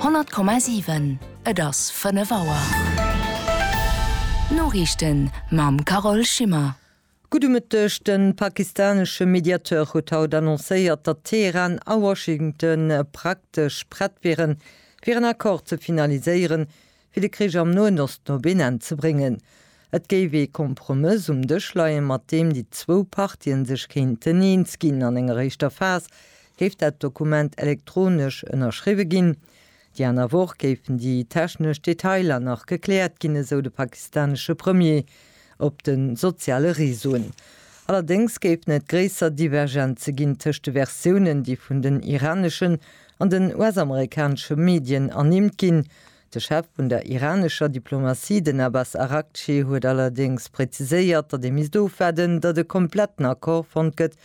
Honnert Komma siwen Et ass fënnef Auer. D'Noriichten mam Carole Schimmer. Gudde Mëtteg. De pakistanesche Mediateur huet haut annoncéiert, datt Teheran a Washington praktesch prett wieren, fir en Accord ze finaliséieren, fir de Krich am Noen Osten op een Enn ze bréngen. Et géif ee Kompromëss um Dësch leien, mat deem déi zwou Partien sech kéinten eens ginn. An enger éischter Phas géif dat Dokument elektronesch ënnerschriwwe ginn. Déi aner Woch géifen déi technesch Detailer nach gekläert ginn, esou de pakistanesche Premier op de soziale Reseauen. Allerdéngs géifen et gréisser Divergenze ginn tëscht de Versiounen, déi vun den iraneschen an den US-amerikanesche Medien ernimmt ginn. De Chef vun der iranescher Diplomatie, den Abbas Araghchi, huet allerdéngs präziséiert, datt ee misst ofwaarden, datt e kompletten Accord fonnt gëtt,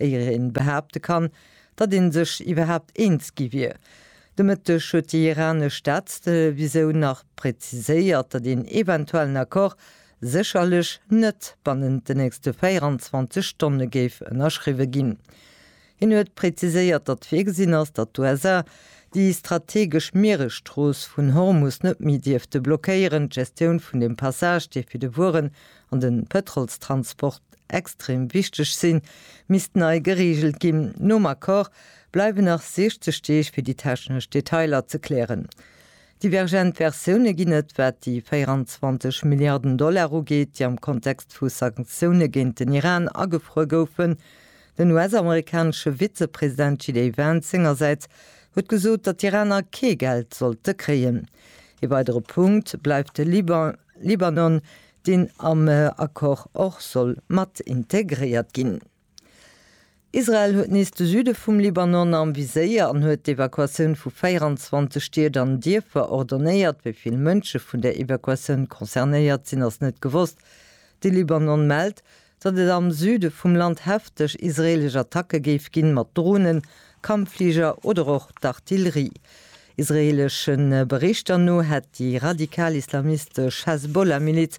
éier ee behaapte kann, datt ee sech iwwerhaapt eens gi wier. De Mëtteg huet déi iranesch Staatstelevisoun nach präziséiert, datt een eventuellen Accord sécherlech net bannent den nächste 24 Stonne géif ënnerschriwwe ginn. Hien huet präziséiert, datt virgesinn ass, datt d'USA déi strategesch Mieresstrooss vun Hormus net méi dierfte blockéieren. D'Gestioun vun dem Passage, dee fir de Wueren an de Pëtrolstransport extrem wichteg sinn, misst nei gereegelt ginn. Nom Accord bleiwen nach 60 Deeg fir déi technesch Detailer ze klären. Divergent Versioune ginn et, wat déi 24 Milliarden Dollar ugeet, déi am Kontext vu Sanktioune géint den Iran agefruer goufen. Den US-amerikanesche Vizepresident JD Vance sengersäits huet gesot, datt d'Iraner kee Geld sollte kréien. Ee weidere Punkt bleift de Liban, Libanon, deen am Accord och soll mat integréiert ginn. Israel huet nees de Süde vum Libanon am Viséier an huet d'Evakuatioun vu 24 Stied an Dierfer ordonéiert. Wéi vill Mënsche vun der Evakuatioun concernéiert sinn, ass net gewosst. De Libanon mellt, datt et am Süde vum Land hefteg israeelesch Attacke géif ginn, mat Dronen, Kampffliger oder och d'Artillerie. Israeelesch Berichter no hätt déi radikal-islamistesch Hezbollah-Miliz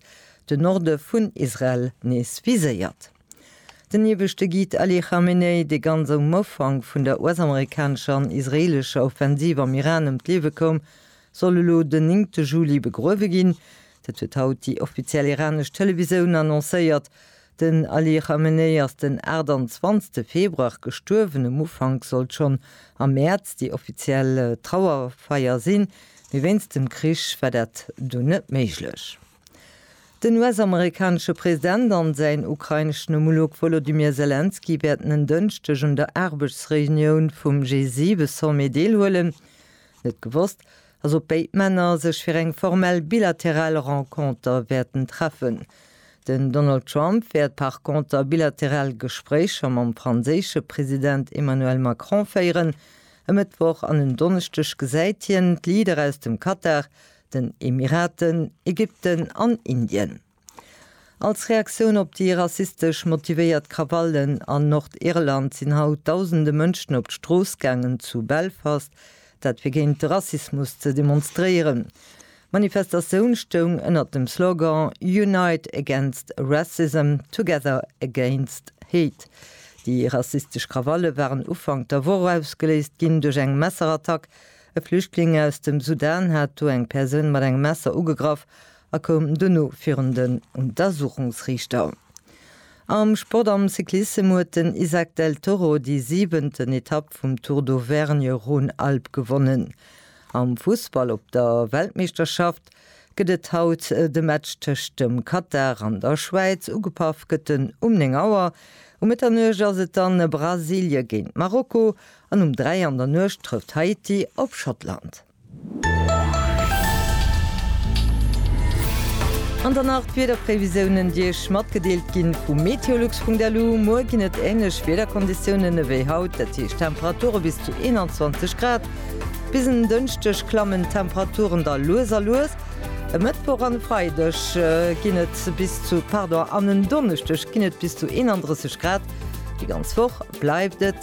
de Norde vun Israel nees viséiert. Den ieweschte Guide Ali Khamenei, dee ganz um Ufank vun der US-amerikanescher an israeelescher Offensiv am Iran ëm d'Liewe koum, soll elo den néngte Juli begruewe ginn. Dat huet haut déi offiziell iranesch Televisoun annoncéiert. Den Ali Khamenei ass den 28 Februar gestuerwen. Um Ufank sollt schonn am Mäerz déi offiziell Trauerfeier sinn, mee wéinst dem Krich war dat dunn net méiglech. Den US-amerikanesche President an säin ukraineschen Homolog Wolodymyr Selenskyj wäerten en Dënschdeg un der Aarbechtsreunioun vum G7-Sommet deelhuelen. Net gewosst Ass op béid Männer sech fir eng formell bilateral Renconter wäerten treffen. Den Donald Trump wäert par conter bilateral Gespréicher mam franséische President Emmanuel Macron féieren. E Mëttwoch an en Donneschdeg gesäit hien d'Leader aus dem Katar, den Emiraten, Ägypten an Indien. Als Reaktioun op déi rassistesch motivéiert Krawallen an Nordirland sinn haut dausende Mënschen op d'Strooss gaangen zu Belfast, dat fir géint de Rassismus ze demonstréieren. D'Manifestatioun stoung ënnert dem Slogan Unite against Racism, Together against Hate. Déi rassistesch Krawalle waren Ufank der Woch ausgeléist ginn duerch eng Messerattack. E Flüchtling aus dem Sudan hat do eng Persoun mat engem Messer ugegraff a koum duerno virun den Untersuchungsriichter. Am Sport Am Cyclissem huet den Izack Del Toro déi siwenten Etapp vum Tour d'Auvergne Rhône-Alpes gewonnen. Am Fussball Op der Weltmeeschterschaft gëtt et haut de Match tëscht dem Katar an der Schwäiz. Ugepaff gëtt en um 9 Auer. Um Mëtternuecht ass et dann Brasilie géint Marokko an um 3 an der Nuecht trëfft Haiti op Schottland. An dann nach d'Wiederprévisiounen, déi Iech matgedeelt gi vu meteolux.lu. Muer ginn et änlech Wiederkonditiounen ewéi haut, dat heescht Temperature bis zu 21 Grad. Bis en Dënschdeg klammen d'Temperaturen da lues a lues. E Mëttwoch an e Freideg ginn et bis zu, pardon, an en Donneschdeg ginn et bis zu 31 Grad. Déi ganz Woch bleift et